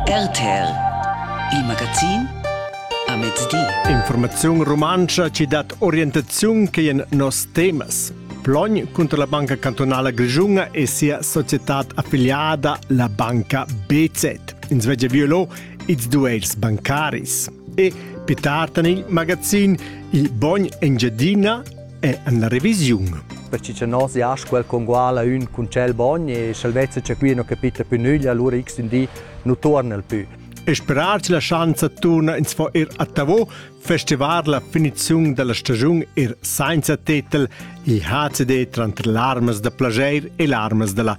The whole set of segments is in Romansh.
RTL Il magazin a mezdi. Informaziun rumantscha ci dat orientaziun che en nos temas. Plogn cunter la Banca Cantonala Grigiunga e sia società affiliata, la banca BZ. In svegia violo ils duels bancaris. E pitartan il magazin Il Bogn Engiadina è en la revisiun. Perché cha nos jasch quel conguala ün cun tschel bogn e sch'el vezza cha qui no capita più nüglia, allura x ün di nu torna'l più. E sperar che la schanza turna ins fo ir a Tavo, festivar la finiziun della stagiun ir senza tetel, il HCD tranter larmas da plager e larmas della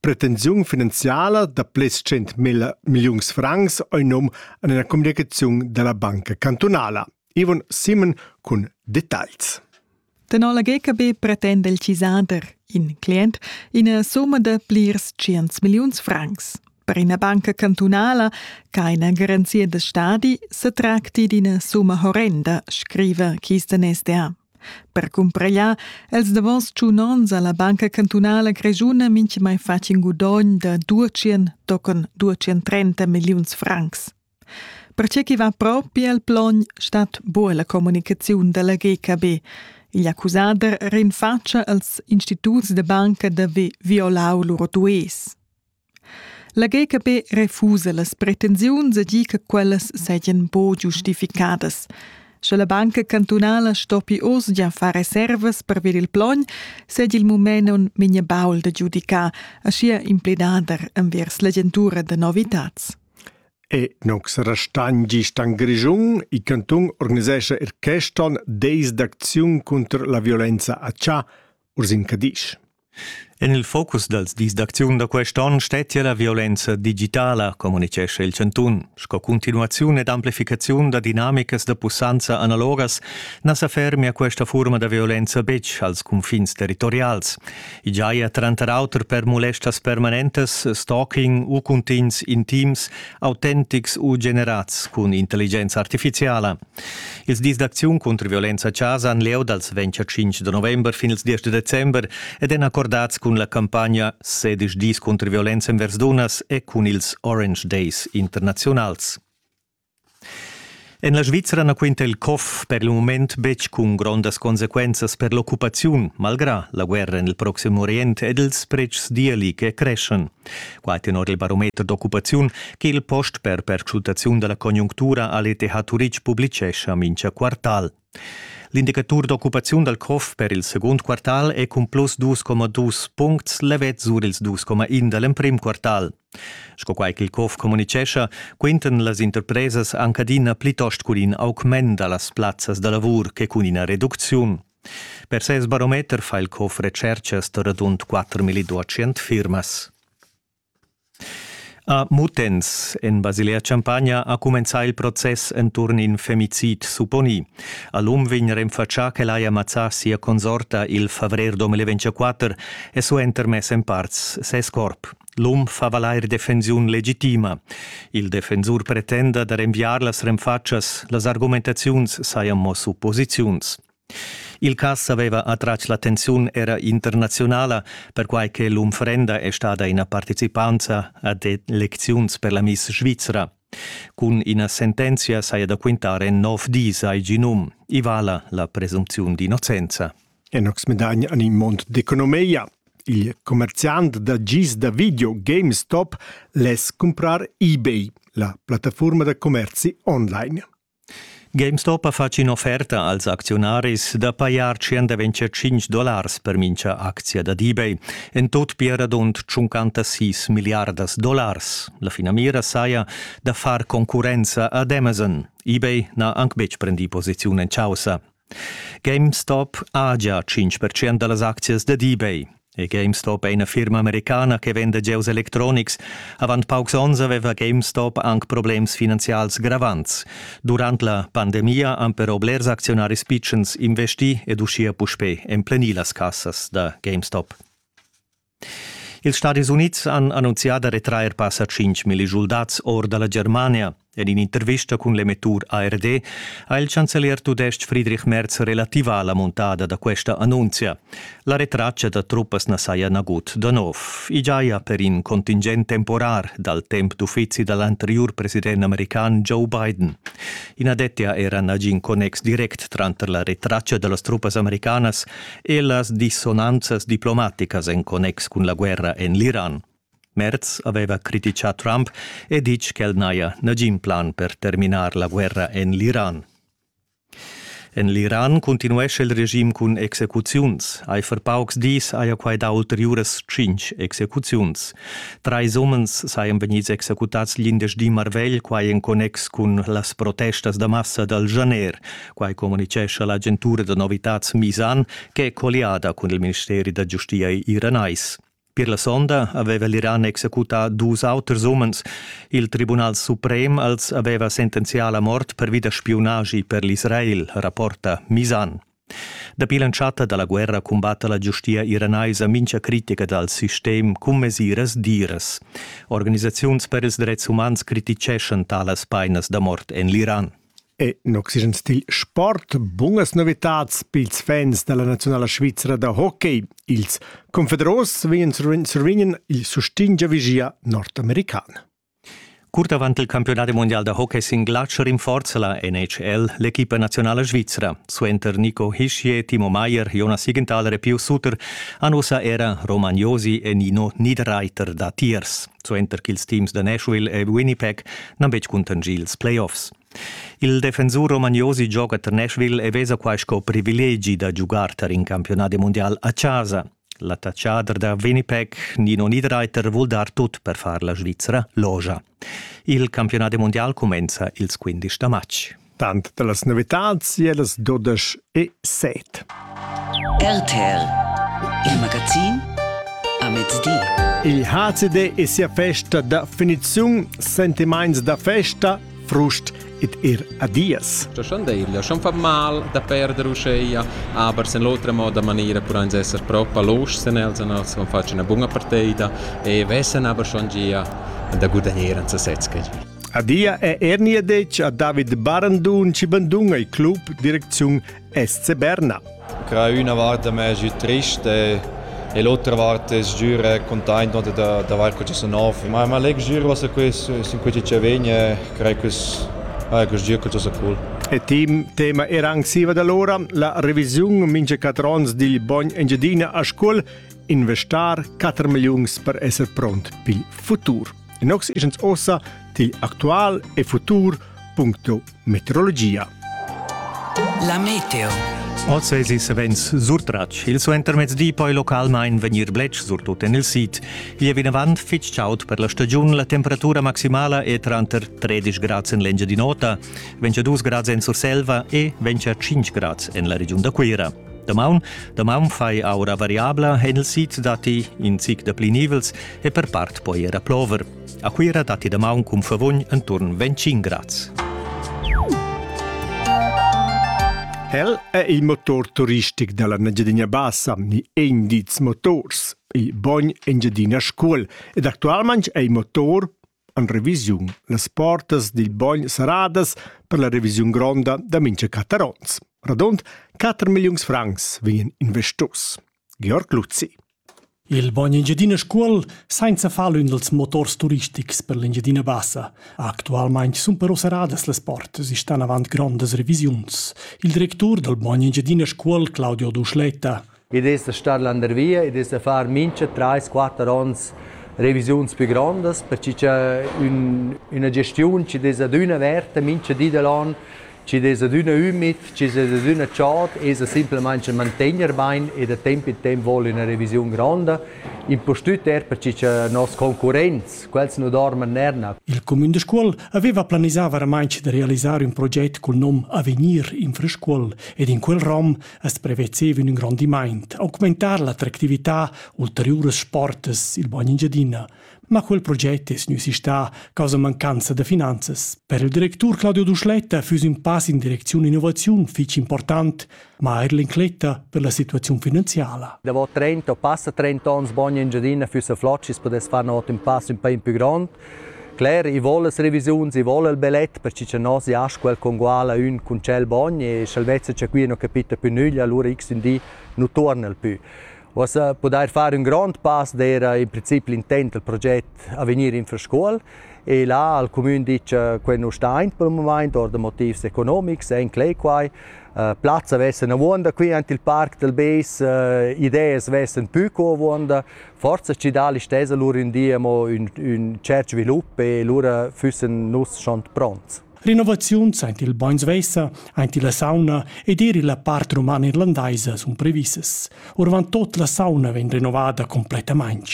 pretensiun finanziala da plets 100.000 milliuns francs ei num en la communicaziun dalla banca cantunala. Ivan Simon cun dettagls. Tenor la GKB pretenda il cisader, in client, ina somma da plirs 100 milliuns francs. Per ina banca cantunala che ina garanzia da stadi se tracti d'ina summa horrenda, scriva Kisten SDA. Per cumpregliar els davos tschun onns ha la Banca cantunala grischuna mintgamai fatg in gudogn da 200 tochen 230 milliuns francs. Pertge ch'i va propi al plogn stat buca la communicaziun dalla GKB. Igl accusader rinfatscha als instituts da banca da violau lur dues. La GKB refusa las pretensiuns e di che quellas seigien buca giustificadas. Sche la banca cantunala stoppi oz gia far reservas per ver il plogn, seigi il mument un migna baul da giudicar, aschia impledader envers l'agentura da novitads. E nox restagn gist an Grischun, il canton organisescha er queston deis d'acziun contr la violenza a Cha, Ursin Cadisch. En il focus dals dis d'acziun da quest onn stettia la violenza digitala, communitgescha il chantun. Sco continuaziun ed amplificaziun da dinamicas da pussanza analogas na sa fermia questa furma da violenza betg als cunfins territorials. I giaja tranter auter per molestas permanentas, stalking u cuntins intims, autentics u generads cun intelligenza artifiziala. Ils dis d'acziun cunter violenza a chasa han lieu dals 25 da november fin ils 10 da december ed èn accordads cun la campagna sedisch dis cunter violenza envers dunnas e cun ils Orange Days internaziunals. En la Svizra na quinta il COF per il mument betg cun grondas consequenzas per l'occupaziun, malgrà la guerra en il proxim Orient ed ils pretschs d'eli che creschan. Quai tenor il barometer d'occupaziun che il post per perscrutaziun da la conjunctura a l'ETH Turitg publicescha mincha quartal. L'indicatur d'occupaziun dal COF per il secund quartal è cun plus 2,2 puncts levet sur ils 2,1 da l'emprim quartal. Sco quai ch'il COF communicescha, quintan las interpresas anc adina plitost cun in augment da las plazzas da lavur che cun ina reducziun. Per ses barometer fa il COF retscherchas da radund 4.200 firmas. A Mutens, en Basilea-Champagna, ha cumenzà il process enturn in femicid supponì. A l'um vegn renfatschà ch'el haja mazzà sia consorta il favrer 2024 e suenter mess en parts ses corp. L'um fa valair defensiun legitima. Il defensur pretenda da renviar las renfatschas, las argumentaziuns sajan mo supposiziuns. Il cass aveva attratg l'attenziun era internazionala, perquai che l'unfrenda è stada ina participanza ad elecziuns per la Miss Svizra. Cun ina sentenzia saja da quintare nov dis ai Ginum. I vala la presumpziun d'innocenza. e nox medagn an in mond d'economia. Il commerciant da gis da video GameStop less cumprar eBay, la plattafurma da commerzi online. GameStop ha fatg in'offerta als acziunaris da pajar 125 dollars per mincha actia da eBay, en tot pia radund 56 milliardas dollars. La finamira saja da far concurrenza ad Amazon. eBay n'ha anc betg prendì posiziun en chaussa. GameStop ha gia 5% da las aczias dad eBay. E GameStop è ina firma americana che venda gieus electronics. Avant paucs onns aveva GameStop anc problems finanzials gravants. Durant la pandemia han però blers acziunaris pitschens investì ed uschia puspè emplenì las cassas da GameStop. Ils Stadis Unids han annunzià da retrair passa 5.000 schuldats or da la Germania. En in'intervista cun l'emettur ARD ha il chancelier tudestg Friedrich Merz relativà la muntada da questa annunzia. La retraccia da truppas na saja nagut da nov. I giaja per in contingent temporar dal temp d'uffizi da l'anteriur president american Joe Biden. I na dettia era nagin connex direct tranter la retraccia da las truppas americanas e las dissonanzas diplomaticas en connex cun la guerra en l'Iran. Merz aveva criticà Trump e ditg ch'el n'haja nagin plan per terminar la guerra en l'Iran. En l'Iran continuescha il regim cun execuziuns. Eifer paucs dis haja quai dà ulteriuras tschintg execuziuns. Trais umens sajan vegnids executads glindesdi marvegl, quai en connex cun las protestas da massa dal Janer, Quai communitgescha l'agentura da novitads Misan che è colliada cun il ministeri da giustia iranais. Per la sonda aveva l'Iran executà dus auters umens. Il Tribunal suprem als aveva sentenzià la mort pervi da spiunagi per l'Israel, rapporta Misan. Dapi l'entschatta da la guerra cumbatta la giustia iranaisa mincha critica dal sistem cun mesiras diras. Organisaziuns per ils drets umans criticeschan talas painas da mort en l'Iran. E in oxigen stil sport bunas novitads pils fans dalla naziunala svizra da hockey. Ils Confederos survegnan il sustegn giavischia nordamerican. Curt avant il campiunat mondial da hockey sin glatsch rinforza la NHL l'equipa nazionala svizra. Suenter Nico Hischier, Timo Meier, Jonas Siegenthaler e Pio Sutter han ussa era Roman Josi e Nino Niederreiter datiers. suenter ch'ils teams da Nashville e Winnipeg n'han betg cuntanschì ils playoffs. Il defensur Romagnosi gioga tar Nashville e vesa quai sco privilegi da giugar tar in campiunadi mundial a chasa. L'attacchader da Winnipeg, Nino Niederreiter, vul dar tut per far la Svizra logia. Il campiunadi mundial cumenza ils 15 da matg. Tant da las novitads e las dudesch e set. RTL, il magazin a mezdi. Il HCD e sia festa da finiziun, sentimaints da festa, frust et ir adias. Da Schandeglia, schon fa mal da perder uscheia, aber sen l'otra moda maniera pur ans esser propa loschen els an als facen una bunga partida e vessen aber schon gia da gudagneren zu setzgen. Adia è Ernie detg a David Barandun chi banduna il club direcziun SC Berna. Cra üna vart me es trist e, e l'otra vart es giür containt da, da vair co sa nov. Ma, ma leg giür was quest sin quei che vegn e crei quest ah, quest gir che sa cool. E team tema era anxiva da l'ora la revisiun minge catrons digl bogn Engiadina a Scuol investar 4 milliuns per esser pront pil futur. Inox isens ossa til actual e futur.meteorologia. La meteo. Oz eis il savens surtratg. Il suentermezz di poi localmain vegnir bletsch surtut en il sid. Vi e vinavant fitg chaud per la stagiun. La temperatura maximala è tranter 13 grads en l'Engiadin'Ota, 22 grads en Surselva e 25 grads en la regiun da Cuira. Damaun, damaun fai aura variabla en il sid datti in zic da pli nivels e per part poi era plover. A Cuira datti damaun cun favugn enturn 25 grads. El è il motor turistic da la Engiadina Bassa, ni Endiz Motors, il bogn Engiadina Scuol ed actualmain è il motor en revisiun las portas dil bogn saradas per la revisiun gronda da mincha catarons. Radund 4 milliuns francs vegnan investos. Georg Luzzi. Il bogn Engiadina Scuol sainza far ün dels motors turistics per l'Engiadina Bassa. Actualmaing sun però seradas las portas e stan avant grondas revisiuns. Il directur del bogn Engiadina Scuol, Claudio Duschletta, id es da star landervia, id es da far mincha trais, quatter ons revisiuns pü grondas, perche cha ün üna gestiun chi'd es adüna averta mincha di da l'on, chi'd es adüna ümid, chi'd es adüna chod, esa simplamaing da mantegner bain e da temp in temp voul üna revisiun gronda, impustüt er perche cha noss concurrents, quels nu dorman nerna. Il cumün da Scuol aveva planisà varamaing da realisar ün proget cul nom Avegnir in Scuol ed in quel rom As prevezev ün ingrondimaint, augmentar l'attractività ulteriuras sportas il Bagn Engiadina. Ma quel proget es gnü sistà causa mancanza da finanzas. Per il directur Claudio Duschletta füss ün pass in direcziun innovaziun fich important, ma eir l'incletta per la situaziun finanziala. Davo 30 o passa 30 ons Bagn Engiadina füss a flot schi's pudess far ün otim pass ün pa in pü grond. Cler, i vol las revisiuns, i vol il belet, perche cha nos ja squel conguala ün cun tschel bogn e sch'el vezza cha qui non capita più nüglia, allura x ün di nu tuorna'l pü. Uossa pudair far ün grond pass d'eira in princip l'intent dal proget a vegnir in Scuol e là al cumün dit cha quel nu sta aint pel mumaint or da motivs economics, e inclè quai. Plazza vessa avuonda qui ant il Parc del Beis, ideas vessan pü co avuonda, Forza stgidal stesa lur ün di amo ün, ün tschert svilup e lura füssen nus schon pronts. Renovaziuns aint il Bainsweiser, aint la sauna ed eir illa part romana irlandaisa sun previssas. Orvant tot la sauna vegn renovada complettamaing.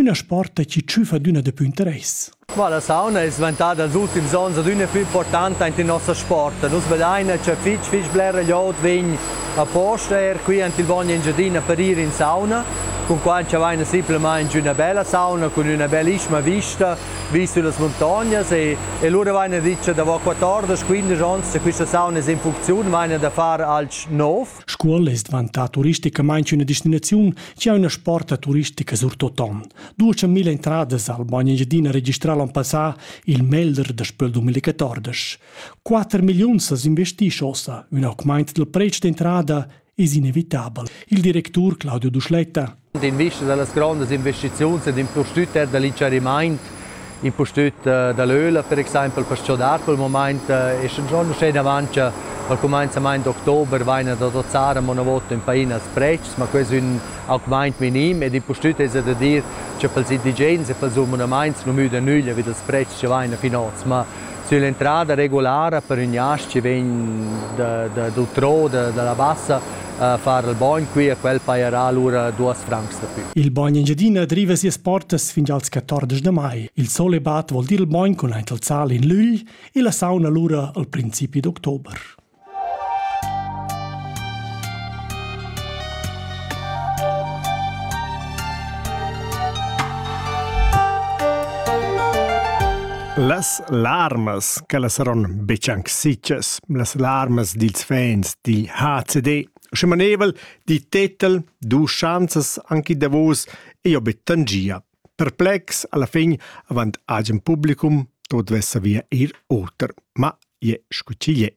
Üna sporta chi tschüfa d'üna dapü interess. Ma la sauna es dvantada ils ultims ons adüna plü importanta aint in nossa sport. Nus vedaina cha fich fich blera glioud vegn aposta eir qui ant il Bogn Engiadina per ir in sauna, cun quai cha vaina simplamaing üna bella sauna cun üna bellissima vista vis sü las muntognas e, e lura vaina dit cha davo 14-15 ons cha quista sauna es in funcziun vaina da far alch nouv. Scuol es dvantà turisticamaing üna destinaziun chi ha üna sporta turistica surtot on. Duce mille entradas al Bagn Engiadina registral l'on passà il meglder daspö 2014. 4 milliuns as investisch ossa, ün augmaint del pretsch d'entrada es inevitabel. Il directur Claudio Duschletta. D'invista da las grandas investiziuns ed in prostüt dall'incharimaint impustüt da l'öla per exaimpel per s-chodar quel momaint e scha giò uschè davancha al cumainzamaint d'october vaina da dozzar amo 'na vota ün painas pretschs, ma que es ün augmaint minim ed impustüt esa da dir cha pels indigens e pels abunamaints nu müdan nüglia vi dals pretschs chi vaina fin hoz, ma sülla entrada regulara per ün jasch chi vegn da d'utrò, da da la Bassa far il bogn qui e quel pajerà lura duos francs da pü. Il bogn Engiadina driva sias portas fin als 14 da mai. Il sole bat vol dir il bogn cun aint il sal in lügl e la sauna lura al principi d'october. Las larmas che la saron betg anc sicas, las larmas dils fens di HCD. Sche manevel di tetel du chanzas anche davos e io betangia. Perplex alla fin avant agen publicum tot vessa via ir oter, ma je scutiglie.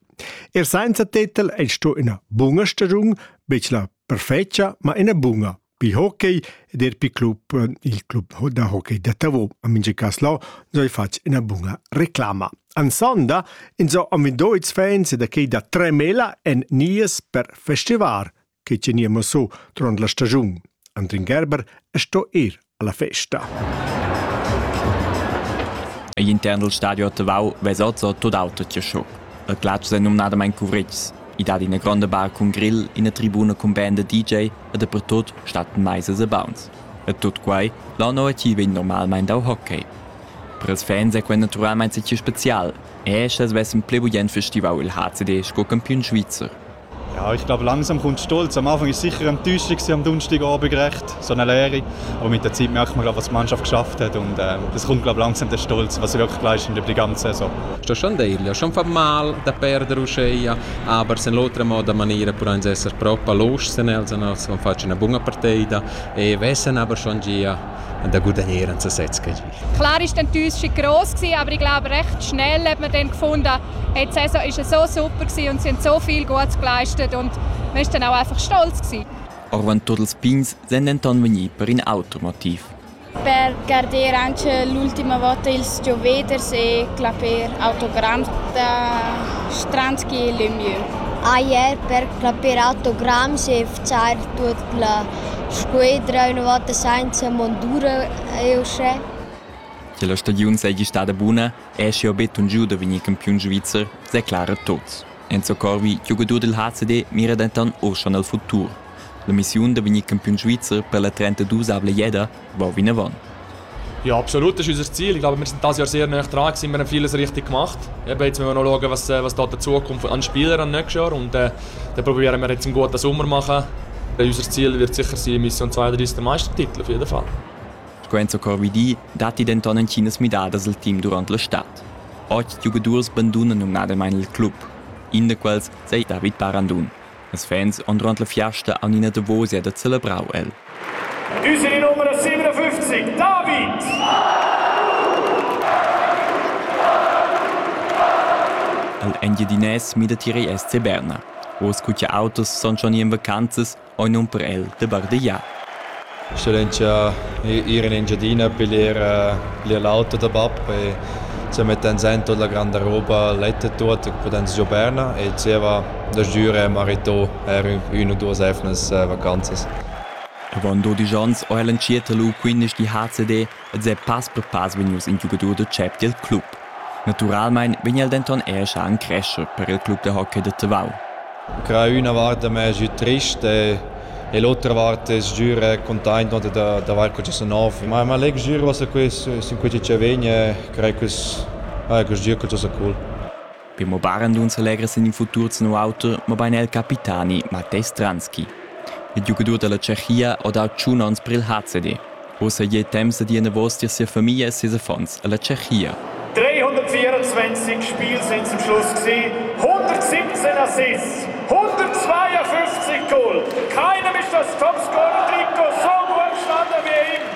Er senza tetel è sto ina bunga stagiun, bec la perfecia, ma ina bunga Pi hockey ed er pi club, il club da hockey da Tavo. A mincha cas là n'hai fatg ina buna reclama. Ansonda inso am vindò ils fans da quei da Tremela en nies per festival che teniamo so tron la stagiun. Andrin Gerber sto ir alla festa. E interno al stadio a Tavau vesozzo tot auto ti show. A Glatsch è numnadamain cuvritgs. I dat ina gronda bar cun grill, ina tribuna cun band da DJ e dapertut stattan maisas e bauns. E tut quai là nua ch'il vegn normalmain dau hockey. Per ils fans è quai naturalmain stì spezial, er sch'els vessen pli bugen festivau il HCD sco campiun svizzer. Ja, ich glaube, langsam kommt Stolz. Am Anfang war es sicher Enttäuschung, am Donnerstagabend gerecht, so eine Lehre. Aber mit der Zeit merkt man, was die Mannschaft geschafft hat. Und ähm, das kommt, glaube ich, langsam der Stolz, was sie wirklich leisten über die ganze Saison. Sto schon dirlo, schon fa mal da perdere uscheia. aber sen l'otra moda maniera puran esser propa losch sen els an els con facci una bunga partida e vessen aber schon gia da gudagneren zu sechs Klar ist dann die Enttäuschung gross gewesen, aber ich glaube recht schnell hat man dann gefunden, hey, die Saison ist so super gewesen und sie haben so viel Gutes geleistet und man ist dann auch einfach stolz gewesen. Auch wenn totes Pins sind dann vegni per in Automotiv. per garder anc l'ultima vota ils gioveders e clapper autogramm da Stranski e Lemieux. Ajer per clapper autogramms e far tut la squadra una volta senza mondura è uschè. Che la stagiun seigi stada buna è schiu betun giu da vegnir campiun svizzer, declara tots. Enzo Corvi, giugadur del HCD, mira denton uschan al futur. L'emissiun da vegnir campiun svizzer per la trentadusavla jeda va vinavant. Ja, absolut, das ist unser Ziel. Ich glaube, wir sind dieses Jahr sehr nah dran gewesen. Wir haben vieles richtig gemacht. Eben, jetzt müssen wir noch schauen, was, was da die Zukunft an Spielern an nächstes Jahr. Und äh, dann probieren wir jetzt einen guten Sommer zu machen. Unser Ziel wird sicher sein, Mission 32 Meistertitel, auf jeden Fall. Scuenza Corvidì datti denton entginas midadas al team durant la stad. Otg giugadurs bandunano numnadamain il club. In da quels sei David Parandun. Las fans han durant la fiasta aunc ina davosia da celebrau el. Düse numero 57, David! Al Engiadinès mi datieri SC Berna. Oz cu che autos son schon in vacanzas, oi nun per el de bardegiar. Excellenzia ir in Engiadina a piglier bler l'auto da bab e se mettan sen tut la granda roba letta tut che pudans giò Berna e zieva da Gira e Marito er ün u duos emnas vacanzas. Avon dodisch onns ho el entschiet lu quindesch di HCD ed è pass per pass vegnius in giugadur da tschep dil club. Naturalmein vegn el denton era en crescher per il club da hockey da Tavau. Cra üna vart a me sü trist e l'otra vart es giür containt no d'avair que sa nov. Ma ma leg giür was a quest sin quei chi vegn e crei quels ah quest gir que sa cool. Per mo barandun s'alegra sin il futur sin auter, mabain el capitani Matej Stranski. Il giugadur da la Tschechia ha dà tschun onns per il HCD. Ussa è temps da dir enavos dir sia famiglia e ses affons a la Tschechia. 324 Spiele sind zum Schluss gewesen, 117 Assists, 152 Goal. Keinem ist das Topscorer-Trikot so gut gestanden wie ihm.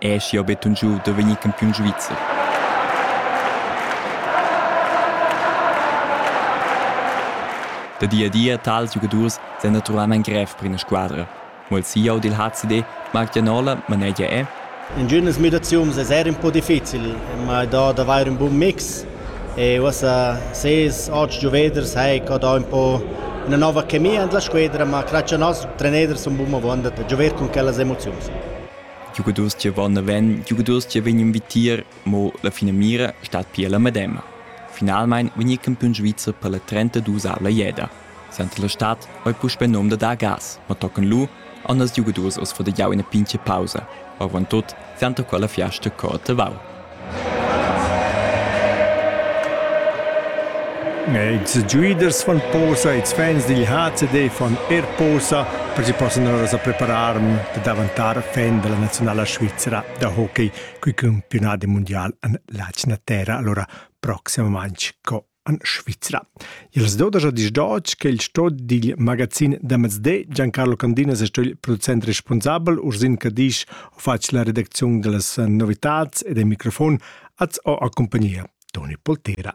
Ei aschia buca giu da vegnir campiun svizzer. Da di a di ein tals giugadurs senaturamein grev per ina squadra. Mo il CEO dil HCD, Marc Janola, manegia è. Intginas mediaziuns es eir ün po difficil, ma i dà d'avair ün bun mix e uossa ses otg giuveders hai ca dà ün po üna nouva chemia in la squedra, ma grazch a nos treneders sun bun avount da giover cun quellas emoziuns. giugadurs che van naven, giugadurs che vegnan vitier, mo la finamira stat pia la medema. Finalmein vegnir campiun svizzer per la 32-avla jeda. Senta la stad ei puspei nom da dar gas, ma tocan lu anders giugadurs oz fo da jau ina pinche pausa. Avon tot senta quella fiasta cor tavau. Ils giuiders fan posa, ils fans digl HCD fan er posa per che possan ora preparar da daventar fan della nazionala Svizzera da hockey cul campiunat mundial en l'atgna terra. Allora proximamaintg co en Svizra. Il dodaja disdotg che il sto digl magazin da mezde Giancarlo Candinas è sto il producent responsabel Ursin Cadisch ho fatg la redacziun dellas novitats e del microfon az ho accompagnia Toni Poltera.